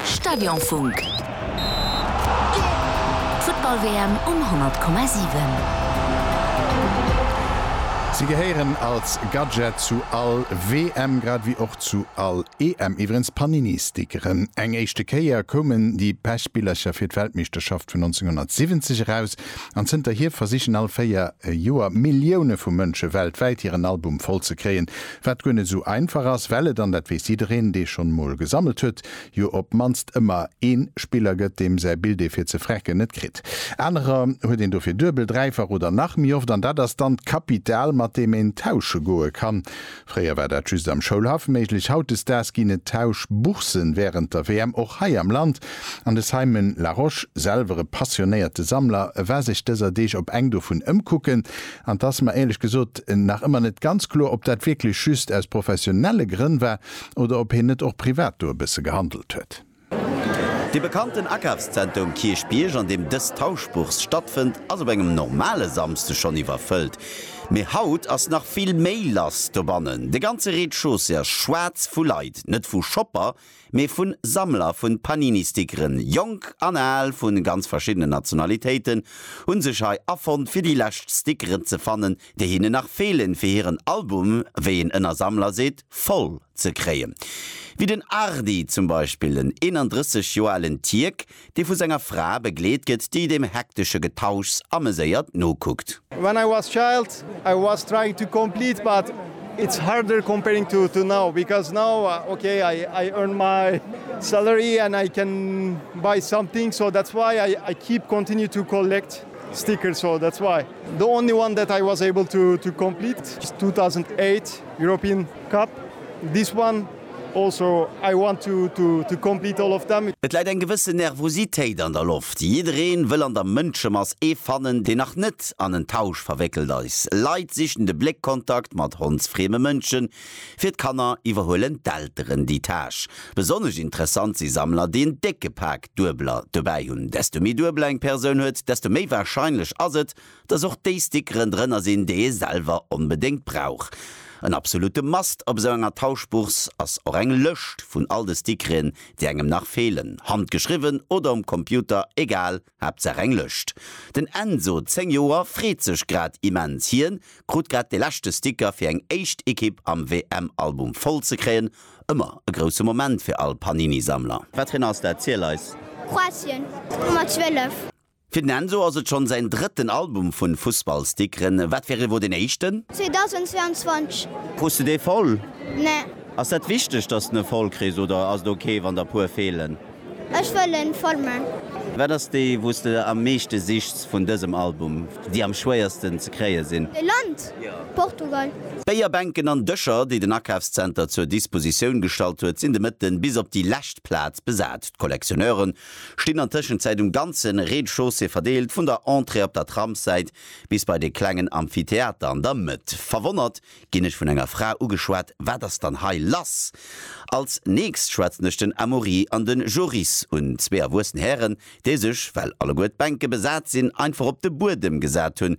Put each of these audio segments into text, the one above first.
Stadionfunk, d'Futtball-WM um 100,7. Si gehéieren als Gadget zu all WM, grad ewéi och zu all EM iwwerens d'Panini-Stickeren. Eng éischte Kéier koumen déi Pechbillercher fir d'Weltmeeschterschaft vun 1970 eraus, an zënterhier versichen all 4 Joer Millioune vu Mënsche weltwäit hiren Album voll ze kréien, Wat guer net esou einfach ass, well et, an dat weess jiddereen, dee schonn emol gesammelt huet, jo op d'mannst ëmmer ee Spiller gëtt, deem säi Bild ee fir ze frecken net kritt. Anerer huet een dofir duebel, dräifach oder nach méi oft, an dat ass dann d'Kapital, mat deem een tausche goe kann. Fréier war dat just am Schoulhaff méiglech, hautdesdaags ginn et Tauschbourssen wärend der WM och hei am Land. An de Simon Larosche, selwer e passionéierte Sammler, war sech dëser Deeg op eng dovun ëmkucken, An et ass mer éierlech gesot nach ëmmer net ganz kloer, ob dat wierklech just aus professionelle Grënn war oder ob hien net och privat do e bësse gehandelt huet. De bekannten Akafszenter um Kierchbierg, an deem dës Tauschbourse stattfënnt, ass op engem normale Samsde schonn iwwerfëllt. Mee haut ass nach vill méi lass dobannen. De ganze Rez-de-chaussée ass schwaarz vu Leit, net vu Shopper, mee vu Sammler vu Panini-Stickeren. Jonk an al vu ganz verschiddenen Nationalitéiten hu sech hei afonnt, fir déi lescht Stickeren ze fannen, déi hinnen nach feelen, fir hiren Album, wéi een ënner Sammler seet, voll ze kréien. Wéi den Ardi zum Beispill, en 31 Joer alen Tierk, dee vu senger Fra begleet gëtt, déi dem hektesche Getauschs ameséiert nokuckt. When I was child I was trying to complete but it's harder comparing to to now because now ok I I earn my salary and I can buy something so that's why I I keep continue to collect stickers so that's why the only one that I was able to to complete is 2008 European Cup this one Et läit eng gewëssen Nervositéit an der Loft. Jiddereen wëll an der Mënschemass ee fannen, deen nach net an en Tausch verwéckelt eis. Leit sichen de Bléckkontakt mat hondsfrieme Mënschen. Fir d'Kanner iwwerhuelen d'Elteren déi Tâche. Besonnesch interessant si Sammler, déi en décke Pak Duebeler dobäi hunn. Desto méi Duebeler eng Persoun huet, desto méi warscheinlech ass et, dass och déi Stickeren drënner sinn, déi ee selwer onbedéngt brauch. En absolute must op esou enger Tauschbourse ass och eng Lëscht vun all de Stickeren, déi engem nach feelen, handgeschriwwen oder um Computer, egal, Haaptsaach eng Lëscht. Den Enzo, 10 Joer, freet sech grad immens. Hien krut grad de leschte Sticker fir eng éischt Ekipp am WM-Album voll ze kréien. Ëmmer e grousse Moment fir all Panini-Sammler. Wat fir en ass dat? Ziel eis! Kroatien, d'Nummer 12. Fir den Enzo ass et schonn säin drëtten Album vun Fussballstickeren. Wat fir ee wor deen éischten? 2022. Krus de dee voll? Nee. Ass dat wichteg dass den e voll kriss oder ass et ok wann der puer feelen? Ech wëll en voll man. Wat ass déi wou s de am meeschte sichs vun dësem Album? Déi am schwéiersten ze kréie sinn? E Land? Portugal. D'Béierbänken an Dëscher, déi den Akafszenter zur Dispositioun gestallt huet, sinn de Mëtten bis op déi lescht Plaz besat. D'Collectionneuren stinn an Tëschenzäit um ganze Rez-de-chaussée verdeelt, vun der Entrée op der Tramssäit bis bei de klengen Amphitheater an der Mëtt. Verwonnert ginn ech vun enger Fra ugeschwat, Wat ass dann hei lass? Als nächst schwätzen ech den Amaury an den Joris un, zwee erwuessen Hären, déi sech, well alleguer d'Bänke besat sinn, einfach op de Buedem gesat hunn,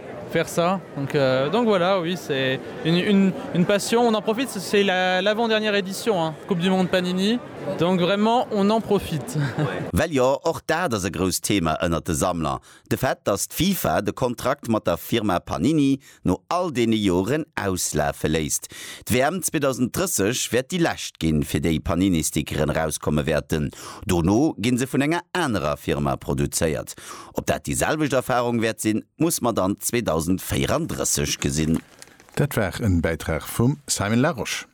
faire ça donc donc voilà oui c'est une une une passion on en profite c'est la l'avant dernière édition hein coupe du monde panini donc vraiment on en profite. Well jo, och dat ass e grousst Thema ënnert de Sammler, de Fait, dass d'FIFA de Kontrakt mat der Firma Panini no all deene Joren auslafe léisst. D'WM 2030 wäert déi lescht ginn, fir déi Panini-Stickeren erauskomme wäerten. Dono gi se vun enger anerer Firma produzéiert. Ob dat déi selwecht Erfarung wäert sinn, muss mer dann 2034 gesinn. Dat war en Bäitrag vum Simon Larosche.